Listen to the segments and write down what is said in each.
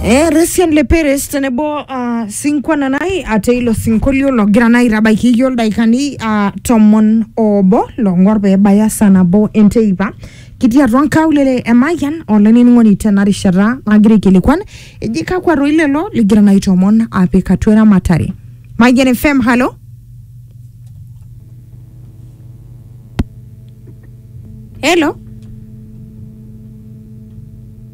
Eh, Resian Le Perez tenebo uh, sinkwa nanai ate ilo sinkolio logira naa aitabaiki iyio ildaikani uh, tomon obo long'or pee ebaya saa nabo enteipa kitii atua nkaulele e Mayian olainining'oni tena rishata nagira aikilikuan eji kakwa toi lelo ligira naa aitomon apik atua eramatare Mayian FM halo helo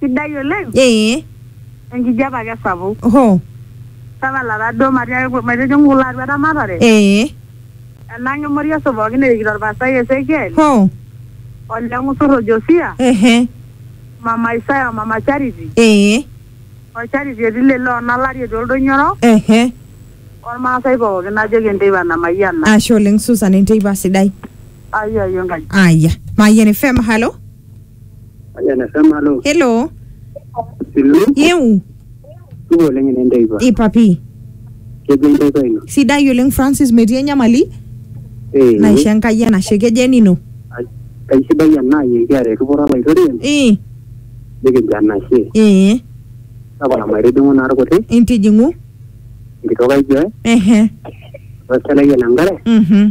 Sidai oleng. Ee. Enkijape ake sapuk. Hoo. Tapala taa duo matiaki maitijing'u kulo atua eramatare. Ee. Enang' Emoriaso pookin erikito Olpastai Esekiel. Hoo. Ole Ng'usur o Josia. Ehe. Mama Isaya o Mama Charity. Ee. O Charity etii Lele o Nalari etii Oldonyo Orok. Ehe. Olmaasai pookin najoki enteipa namayiana. Ashe oleng Susan enteipa sidai. Ayiayio Enkai. Aya. Mayian FM, halo. Aja na sama lo. hello Silu. yeu Tuko lenye nenda iba. ipapi Kejo nenda iba ino. sidai oleng francis metii enyamali Eh. naisho enkai enashe kejo enino Kaisidai ena yekiara erripoto olaitoriani ee nikijo anashe. ee Tapala maitijing'u naa irkuti intijing'u enkitok ai Joy ehe oselai ele nkare mhm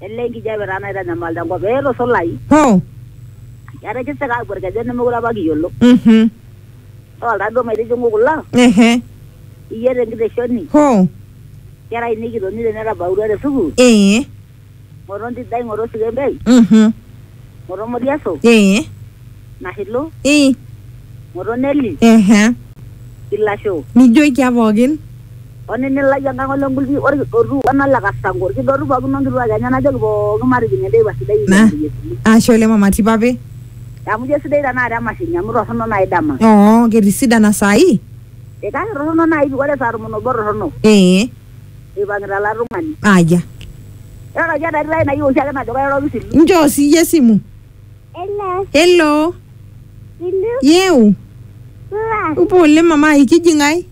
Ele enkijape taa naitanyamal tenkop pee etusulai. Hoo. Etisika aapuo ilkejen nemeekure apa kiyiolo. Mhm. Idol taa duo maitijing'u kulo. Ehe. Iyiet enkiteshoni. Hoo. Nkera ainei kitonita netabautua te sukuul. Ee. Ng'oto Ntidai, ng'oto Sikembei. Mhm. Ng'oto Moriaso. Ee. Nashilu. Ii. Ng'oto Neli. Ehe. Ilasho. Nijoikia pookin. Onini lai enkang ole ngulpi olkidotu wena le kasango olkidotu pookin onkituak enye najoki pookin matijing enteipa sidai Na, ekiamari Yesu Kristo. ashe oleng mama Tipape. Amu ijo sidai tenakata emashini amu torrono nai dama. Oo, ketisidana saai? Ee kake torrono nai pi ore saa tomon obo torrono. Ee. Eipang'ita ila tung'ani. Aya. Iroroki entati lai nayieu oshiake najo kairoroki sii. Nchoo siyie esimu. Hello. Hello. Ilu. Yeu. Supa. Upo oleng mama ai kiji ng'ae?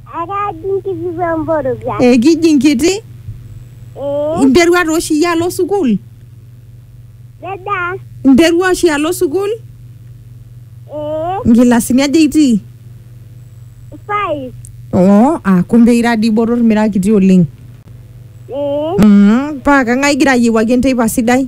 Akaji nkishu emborobia. Eh, kiji nkiti. Ee. Interua taa oshi iyie alo sukuul? Dada. Interua oshi alo sukuul? Ee. Nkilasini aja itii? Five. Oo, ah kumbe ira dii botor mira kiti oleng. Ee. Mm, paa kang'ae igira ayiewuaki enteipa sidai?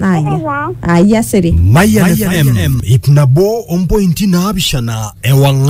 Aya. Aya siri. Mayan FM, ip nabo ompointi naapishana ewang'an.